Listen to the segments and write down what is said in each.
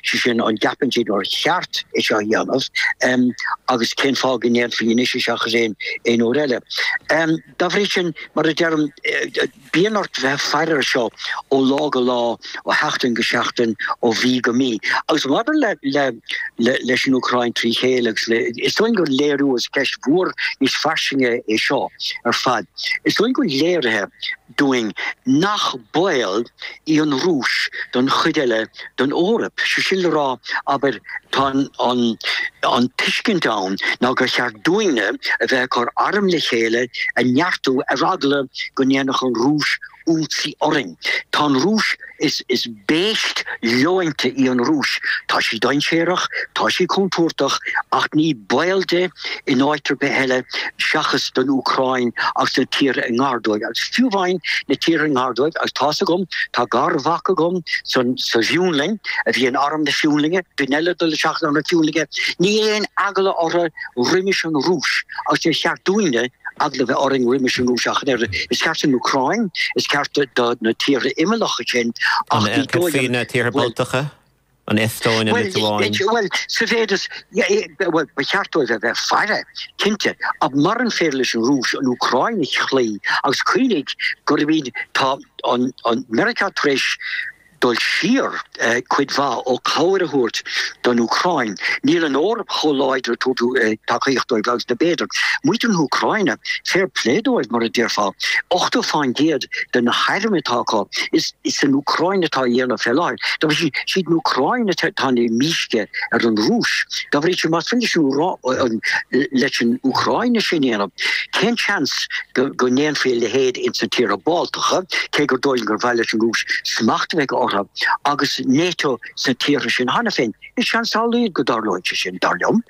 sé sin an gceapann siad nár cheart é seo a dhéanamh um, agus cén fáth go ndéanfaí anois é seo agus aon, aon uair eile. Um, dá bhrí sin, mar a deirim, eh, bíonn ort bheith faire ar seo ó lá go lá, ó sheachtain go seachtain, ó mhí go mí. Agus maidir le, le, le, leis an Úcráin trí chéile agus le, is dóigh go léiríonn, is ceist mhór níos fairsinge é seo ar fad. Is dóigh go léiríonn sé dúinn nach baol í an Rúis don chuid eile den Eoraip. Sé sin le rá, abair, tá an tuiscint ann ná gur cheart dúinne a bheith ag cur airm le chéile á neartú ar eagla go ndéanfadh an Rúis ionsaí orainn. Tá an Rúis. Is beithíoch leonta í an Rúis. Tá sí dainséarach, tá sí contúirteach, ach ní baol d'aon áit ar bith eile seachas don Úcráin agus na tíortha i ngar dóibh. Agus fiú amháin na tíortha i ngar dóibh, agus tá's agam, tá garmhac agam sa bhFionlainn a bhí in arm na Fionlainne, duine eile ag dul isteach in arm na Fionlainne, níl aon eagla orthu roimis an Rúis, agus níor cheart dúinne, eagla bheith orainn roimis an Rúis ach an oiread. Is ceart don Úcráin, is ceart do na tíortha imeallacha sin ach na tíortha Báltacha, an Eastóin, an Liotuáin. Bhuel, sa mhéid is, bhuel, ba cheart dóibh a bheith faire, cinnte, ach muran féidir leis an Rúis an Úcráin a chloí, agus cuimhnigh gurb ea, tá an Meiriceá tar éis, dul siar cuid mhaith ó cabhair a thabhairt don Úcráin. Níl an Eoraip chomh láidir ag tabhairt tacaíocht dóibh agus a b'fhéidir, muintir na hÚcráine, fair play dóibh mar a déarfá, 80 fán gcéad de na hairm atá acu, is san Úcráin atá á ndéanamh fé láthair. Dá bhrí sin is iad an Úcráin atá ag déanamh mísce ar an Rúis. Dá bhrí sin más féidir leis an Úcráin é sin a dhéanamh, cén seans go ndéanfaí a leithéid ins na tíortha Báltacha, cé gur dóigh liom gur mhaith leis an Rúis smacht a bheith acu orthu, agus NATO sna tíortha sin cheana féin. Is seans an-lag go dtarlóidh sé sin, dar liom.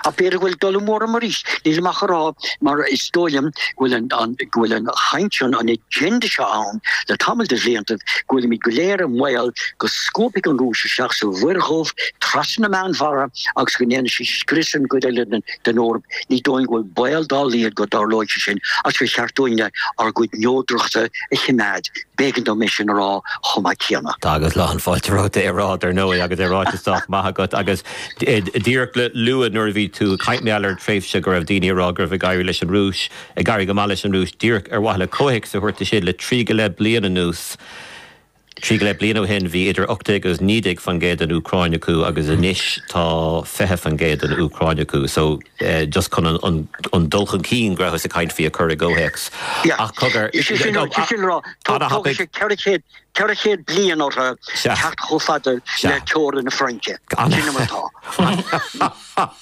Ach b'fhéidir go bhfuil dul amú orm arís. Nílim ach ag rá, mar is dóigh liom go bhfuil, go bhfuil an chaint seo, an agenda seo ann le tamall de bhliantaibh, go bhfuilimid go léir i mbaol go scuabfaidh an Rúis isteach sa Mhuir Dhubh, trasna na Meánmhara, agus go ndéanfaidh sí scrios ar an gcuid eile den den Eoraip, ní dóigh go bhfuil baol dá laghad go dtarlóidh sé sin, agus ba cheart dúinne ár gcuid neodrachta a chimeád, b'éigean dom é sin a rá chomh maith céanna. Tá agus lán fáilte romhat é a rá, dar ndóigh, agus é ráite sách maith agat, agus díreach le lua, nuair a bhí tú ag caint faoin tréimhse go raibh daoine ag rá go raibh ag éirí leis an Rúis, ag éirí go maith leis an Rúis, díreach ar mhaithe le comhthéacs a thabhairt dó sin, le trí go leith bliain anuas, Trí go leith bliain ó shin bhí idir ocht déag agus naoi déag faoin gcéad den Úcráin acu agus anois tá fiche faoin gcéad den Úcráin acu. So just chun an dul chun cinn go rabhthas ag caint faoi a chur i gcomhthéacs. Yeah. Ach cogar. Is é sin is é sin rá tóg sé ceithre chéad ceithre chéad bliain ortha teacht chomh fada le teorainn na Fraince. Sin atá.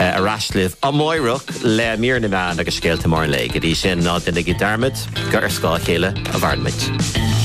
Ar ais libh amárach le Mír na Meán agus Scéalta Móra an Lae. Go dtí sin, ná déanaigí dearmad gur ar scáth a chéile a mhaireann muid.